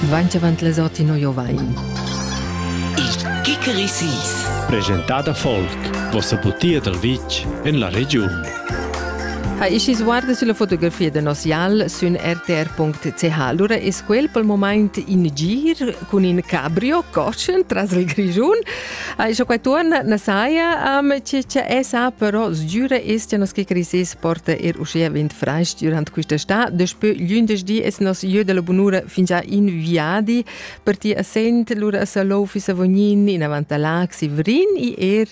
Dvainch avant les Ortinoio vain. Il Kikerisis. Presentada folk, vossa butia dal vitg en la regiun. Ha ischi sguarda sulla fotografia da nos jal sün rtr.ch. Lura es quel pel moment in gir cun in cabrio cotschen tras il Grischun Ai cho quai tuorna na saja am chi cha esa, però sgüra es cha nos che crisis porta er uschè vint francs durant quista sta. Despö lündeschdi es nos jö da la bunura fingià in viadi per ti a Sent, lura a Salouf, Savognin, inavant a Lac, Sivrin e er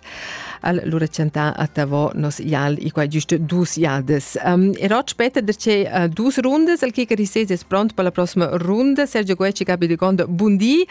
al lura chantà a Tavò nos jal i qua giüst dus jadas. Um, e rot später derce uh, dus rundas, el che crisis es pront per la prossima runda. Sergio Guecci, Gabi de Gondo, buondì.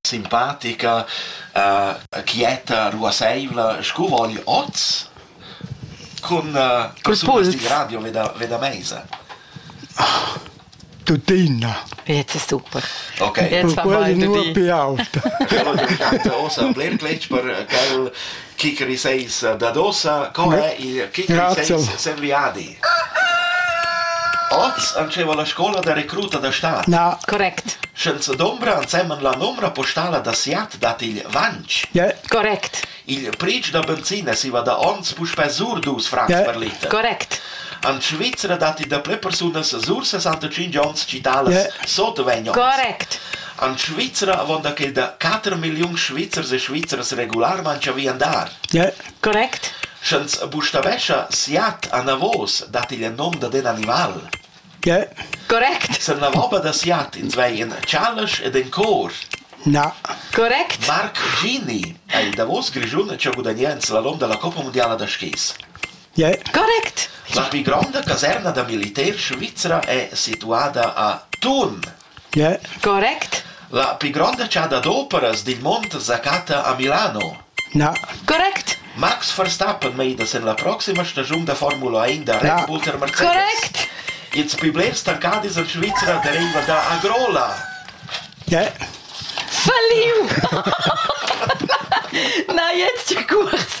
simpatica, uh, quieta, ruasseivla, sco vogl oz cun, uh, cun sul radio veda, veda meisa. Ah, tuttina. Jetzt ist super. Okay. Jetzt haben wir nur Piaut. Ja, du kannst auch ein Blirklitsch per äh, Kicker seis dad ossa, co è il kicker seis serviadi? Oz antscheva la scola da recruta da stad. Na. Correct. Sch'els dombra ensemen la numra postala da Siat dat il vanch. Yeah. Correct. Il pric da benzina si va da ons puspè sur dus francs yeah. per liter. Correct. An Svizra datti da ple persunas sur 65 onns citalas yeah. sotto vegn Correct. En Svizra avon da quel da quater milliuns Svizzers e Svizzers regularmein savi andar. Correct. Sch'ins bustavescha siat anavos, dat igl nom dad in animal. Correct. Sen la vobba da siat ins vei in chalesch ed in cor. Na. Correct. Marc Gini è il davos Grischun che ha gudagnà in slalom della Coppa Mondiala da skis. Yeah. Correct. La più grande caserna da militär svizra è situada a Thun. Correct. La pli gronda chasa d'operas dil mund secatta a Milano. Correct. Max Verstappen meida sin la proxima stagiun da Formula 1 da Red Bull tar Mercedes. Correct. Ils pli blers tancadis en Svizra deriva da Agrola. Falliu! Na, jetzt die Kurs.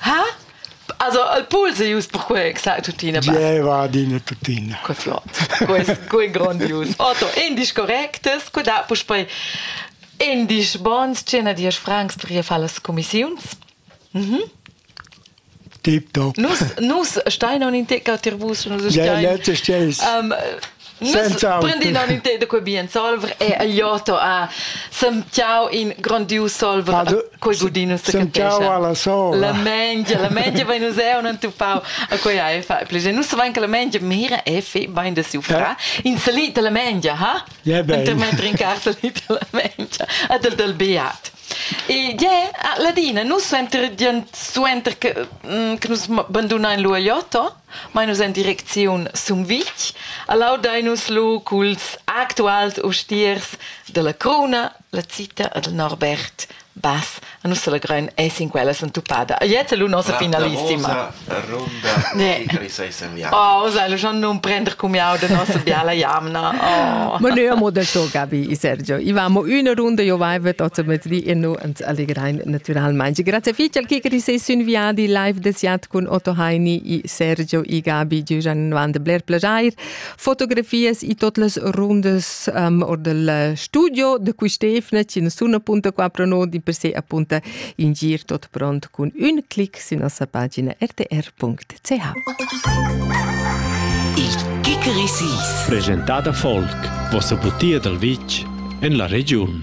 Ha? Also, il pool se ius per quei exact tuttina. Gieva adina tuttina. Que flott. Quest, que grondius. Otto, indisch correctes, cu da puspei indisch bons, 110 francs per ihr far las commissiuns. Mhm. Tip top. Nus, nus stein on in tecca tir vus, nus stein. Ja, letzte Stelle. Um, Prendin in te da quei bien solver e agliotto a semtiau in grandiu solver a quei gudino se capescia la mengia la mengia vai nus eu non tupau a quei ai fa plege nus vain che la mengia mira e fe bain da siu fra in salit la mengia ha intermetter in carsalit la mengia a del del beat E yeah, ah, Ladina, nus suenter suenter che, mm, che nus bandunain l'uogliotto, Mainus en direcziun Sumvitg. Allaudain nus lu culs actuals ustiers dalla Cruna, la Zita e del Norbert Bass. A nus selegrein ei sin quella sentupada. Jetzt lu nossa finalissima. Ne. Oh, sai, lu schon non prender cumiau de nossa biala jamna. Oh. Ma neu amo del to, Gabi, Sergio. I vamo üna runda, jo vaivet ozza mezdi e nu en allegrein naturalmein. Grazie fitg al Kikeri sei sün viadi live des Jad cun Otto Heini e Sergio e Gabi Giugian van de Blair Plajair. Fotografias e tot las rundas um, or del studio de quistefna ci nessun.4 di per se appunto in gir tot pront cun un clic su nossa pagina rtr.ch. Il Kikeri Presentada Volk, vossa butia dal vitg en la regiun.